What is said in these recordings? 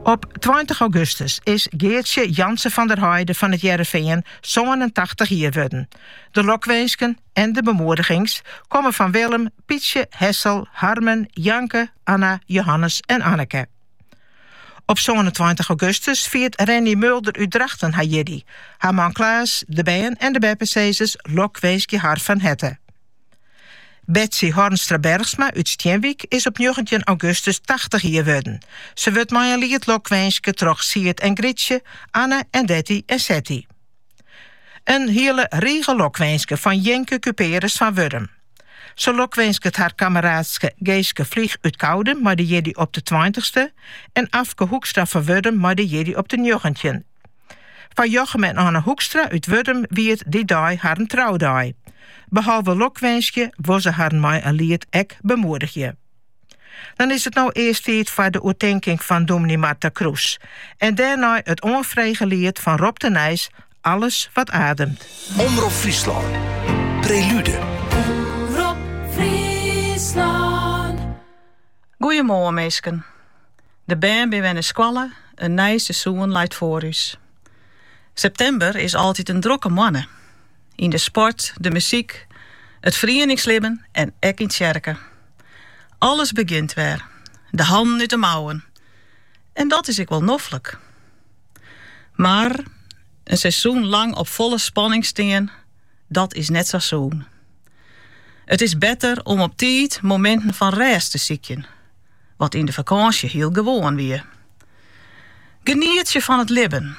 Op tweintich augustus is Geartsje Jansen van der Heide fan It Hearrenfean sânentachtich jier wurden. De lokwinsken en de bemoedigings komme fan Willem, Pietsje, Hessel, Harmen, Janke, Anna, Johannes en Anneke. Op sânentweintich augustus fiert Renny Mulder út Drachten har jiddei. Har man Klaas, de bern en de beppesizzers lokwinskje har fan herte. Betsy Hornstra Bergsma út Stienwyk is op njoggentjin augustus tachtich jier wurden. Se wurdt mei in liet lokwinske troch Siet en Grytsje, Anne en Detty en Setty. In hiele rige lokwinsken fan Jinke Cuperus fan Wurdum. Se lokwinsket har kammeraadske Geeske Vlieg út Koudum mei de jiddei op de tweintichste en Afke Hoekstra fan Wurdum mei de jiddei op de njoggentjinde. Foar Jochem en Anne Hoekstra út Wurdum wie it dy dei harren troudei. Behalve lokwinskje wol se harren mei in liet ek bemoedigje. Dan is it no earst tiid foar de oertinking fan dominee Marta Kroes en dêrnei it oanfrege liet fan Rob de Nijs Alles wat ademt. Omrop Fryslân, Prelude. Omrop Fryslân. Goeiemoarn minsken. De bern binne wer nei skoalle, in nij seizoen leit foar ús. Septimber is altyd in drokke moanne. Yn de sport, de muzyk, it ferieningslibben en ek yn tsjerke. Alles begjint wer, de hannen út de mouwen. En dat is ek wol noflik. Mar in seizoen lang op folle spanning stean, dat is net sa sûn. It is better om op tiid mominten fan rêst te sykjen. wat yn de fakânsje hiel gewoan wie. Genietsje fan it libben,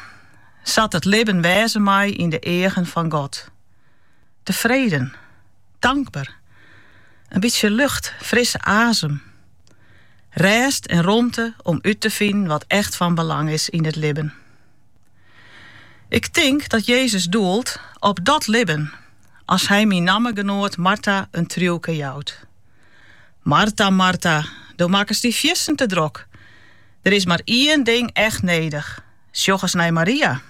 sa't it libben wêze mei yn de eagen fan God. Tefreden, tankber, in bytsje lucht, frisse azem, rêst en romte om út te finen wat echt fan belang is yn it libben. Ik tink dat Jezus doelt op dat libben as Hy myn nammegenoat Marta in triuwke jout. Marta, Marta, do makkest dy fiersten te drok. Der is mar ien ding echt nedich, sjoch ris nei Maria.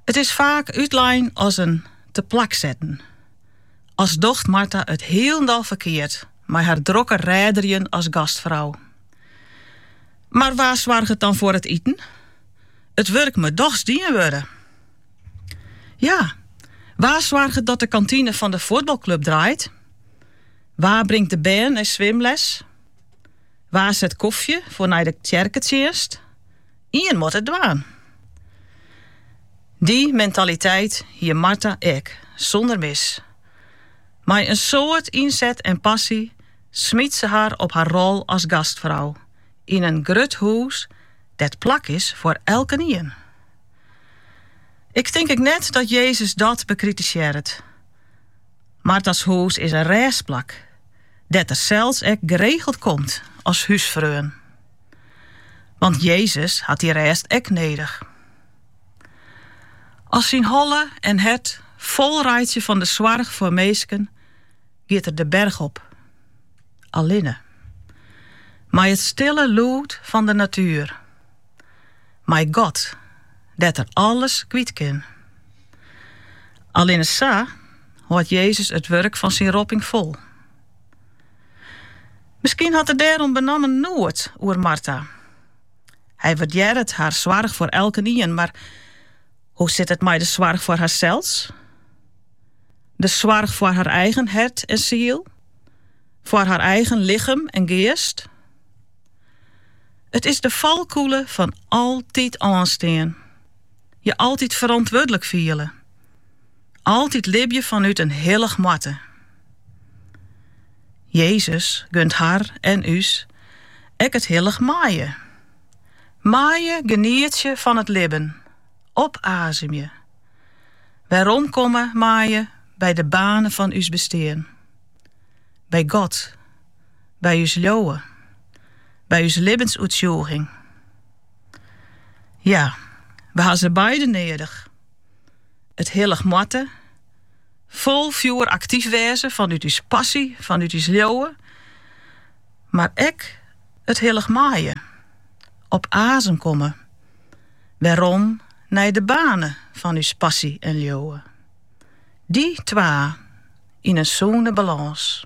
It is faak útlein as in te plak setten. As docht Marta it hielendal ferkeard mei har drokke redderjen as gastfrou. Mar wa soarget dan foar it iten? It wurk moat dochs dien wurde. Ja, wa soarget dat de kantine fan de fuotbalklup draait? Wa bringt de bern nei swimles? Wa set kofje foar nei de tsjerketsjinst? Ien moat it dwaan. Dy mentaliteit hie Marta ek, sûnder mis. Mei in soad ynset en passy smyt se har op har rol as gastfrou yn in grut hûs dêr't plak is foar elkenien. Ik tink ek net dat Jezus dat bekritisearret. Marta's hûs is in rêstplak, dêr't er sels ek geregeld komt as húsfreon. Want Jezus hat dy rêst ek nedich. As syn holle en hert fol reitsje fan de soarch foar minsken, giet er de berch op, allinne, mei it stille lûd fan de natuer. mei God, dêr't er alles kwyt kin. Allinne sa hâldt Jezus it wurk fan syn ropping fol. Miskien hat er dêrom benammen noed oer Marta. Hy waardearret har soarch foar elkenien, mar hoe sit it mei de soarch foar harsels? De soarch foar har eigen hert en siel? Foar har eigen lichem en geast? It is de falkûle fan altyd oanstean. Je altyd ferantwurdlik fiele. Altyd libje fanút in hillich moatte. Jezus gunt har en ús ek it hillich meie. Meie genietsje fan it libben, opazemje. Weromkomme meie by de boarne fan ús bestean. By God. by ús leauwe, by ús libbensoertsjûging. Ja, we ha se beide nedich. It hillich moatte fol fjoer aktyf wêze fanút ús passy, fanút ús leauwe, mar ek it hillich meie, op azem komme, werom nei de boarne fan ús passy en leauwe. Dy twa yn in sûne balâns.